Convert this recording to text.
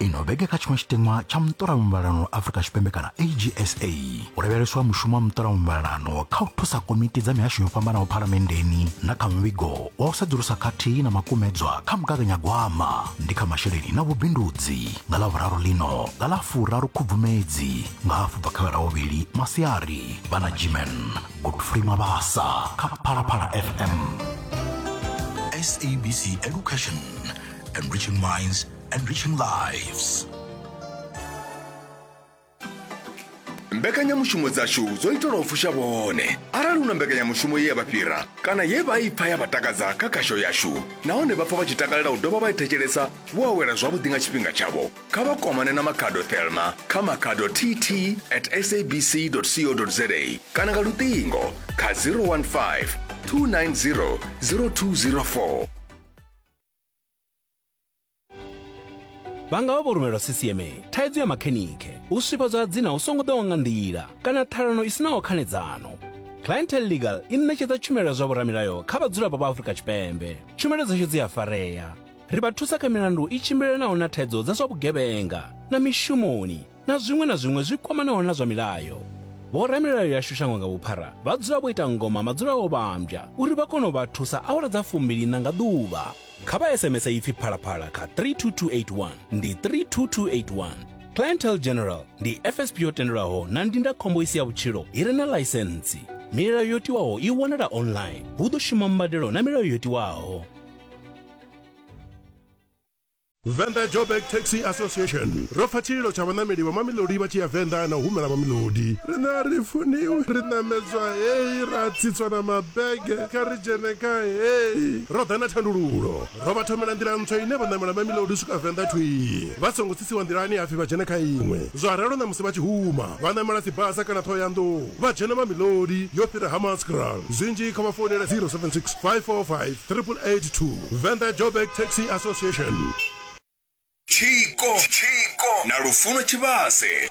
ino vhege kha tshiṅwe tshitinwa tsha muṱolamuvhalano afrika tshipembe kana agsa u lavheleswa mushumo wa muṱolamuvhalano kha u thusa komiti dza mihasho yo fhambanaho phalamenndeni na kha muvhigo wa u sedzulusa khathihi na makumedzwa kha mugaganyagwama ndi kha masheleni na vhubindudzi nga ḽa vhuraru ḽino nga ḽa furaru khubvumedzi nga hafhu bva kha vha lavhuvhili masiari vha na gmen godfrey mabasa kha phalaphala fm sabc education enriching minds enriching lives mbekanyamushumo dzashu dzo itelwa u fusha vhone arali hu na mbekanyamushumo ye ya vha fhira kana ye vha i pfa ya vha takadza kha khasho yashu nahone vha pfa vha tshi takalela u dovha vha i thetshelesa vho awela zwavhuḓi nga tshifhinga tshavho kha vha kwamane na makhado thelma kha makhado tt at sabc co za kana nga luṱingo kha 015 290 0204 vha nga vha vho rumelwa ccma thaidzo ya makhenikhe u swifhadzwa ha dzina hu songo ḓaho nga nḓila kana ṱhalano i sinaho khanedzano clientel legal i ṋetshedza tshumelo ya zwa vhoramilayo kha vhadzulapo vha afrika tshipembe tshumelo dzashu dzi a farea Ri vha thusa kha milandu i tshimbilelanaho na thaidzo dza zwa vhugevhenga na mishumoni na zwiṅwe na zwiṅwe zwi kwamanaho na zwa milayo. Vhoramilayo yashu shango nga vhuphara vha dzula vho ita ngoma madzula o vhambya uri vha kone u vha thusa awara dza fumbili-ṋa nga ḓuvha. Kha vha SMS ipfi Phalaphala kha 32281, ndi 32281. Clientele General ndi FSP yo tendelwaho na ndindakhombo i si ya vhutshilo i re na ḽaisentsi. Milayo yo tiwaho i wanala online. Hu ḓo shuma mbadelo na milayo yo tiwaho. Venḓa Joburg Taxi Association ro pfa tshililo tsha vhaṋameli vha mamilodi vha tshi ya venḓa na u humela mamilodi rina ri funiwi ri ṋamedzwa heyi ra tsitswa na mabege kha ri dzhene kha heyi ro ḓa na thandululo ro vha thomela nḓila ntswa ine vha ṋamela mamilodi u swika venḓa thwii vha songo tsitsiwa nḓilani hapfi vha dzhene kha iṅwe zwa ralo na musi vha tshi huma vha ṋamela dzibasa kana ṱhohoyanḓou vha dzhena mamilodi yo fhira ha maskral zwinzhi kha vha founele 076 545 888 Venda Joburg Taxi Association. Tshiko na Lufuno Tshivhase.